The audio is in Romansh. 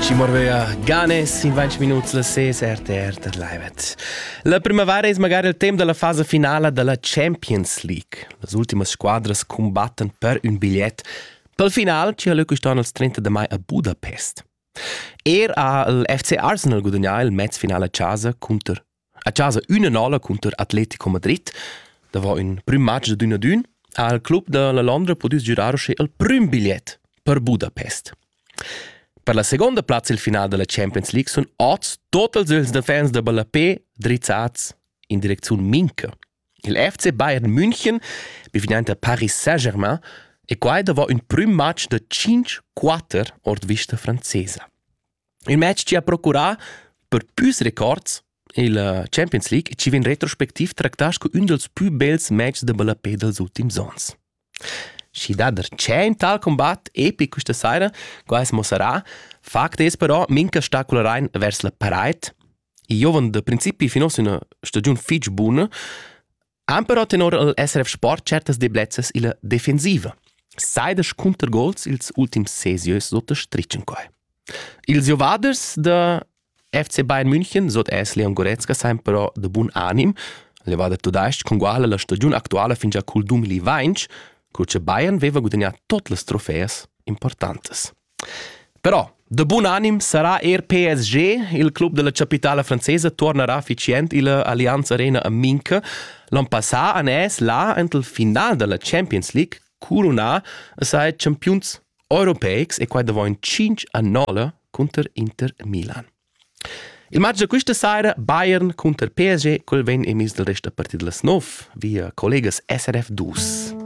Ci morvea Ganes in 20 minuts la ses RTR dat livet. La primavera es magari il temp della fase finala della Champions League. Las ultimas squadras combattan per un bigliet pel final ci ha Lucas Donalds 30 de mai a Budapest. Er ha il FC Arsenal gudagnà il mezfinale a casa cunter A chasa ün'anala cunter Atletico Madrid davo ün prüm match da d'ün ad ün ha il club da la Londra pudü girar uschè il prüm bigliet per Budapest. Per la seconda plazza il final da la Champions League sun oz totals ils defens da Ballapé drizzats in direcziun Minca. Il FC Bayern München, bivinente Paris Saint-Germain, e quai davo ün prüm match da 5-4 ord vista francesa. Il match chi ha procurà per püs records il uh, Champions League chi vain retrospectiv tractà scu ün dals pü bels match da ballapè dals ultims ons. Schi dà der tschient tal combat epic quista saira, qua es mossarà. Fakt es però, mincha stacularein vers la paraid. I giovan da principi fin ossa üna stagiun fich buna. Ampero tenor el SRF Sport certas deblezzas illa defensiva. Saidas cunter gols ils ultims sesieus s'otterstritschen quai. Ils giovaders da FC Bayern München, sot es Leon Goretzka, sain però de bun anim, levader tudais-ch con guala la stagiun actuala fin già cul 2020, co che Bayern veva gudagnà tot las trofeas importantes. Però da bun anim sarà er PSG. Il club della capitala francesa tornerà efficient illa Allianz Arena a Minca. L'on passà han es là ent il final della Champions League curunà a sai champiuns europeics e quai davant 5 a 9 cunter Inter Milan. Il matg da questa saira Bayern cunter PSG quel vegn emis dal rest da partit las 9 via collegas SRF 2.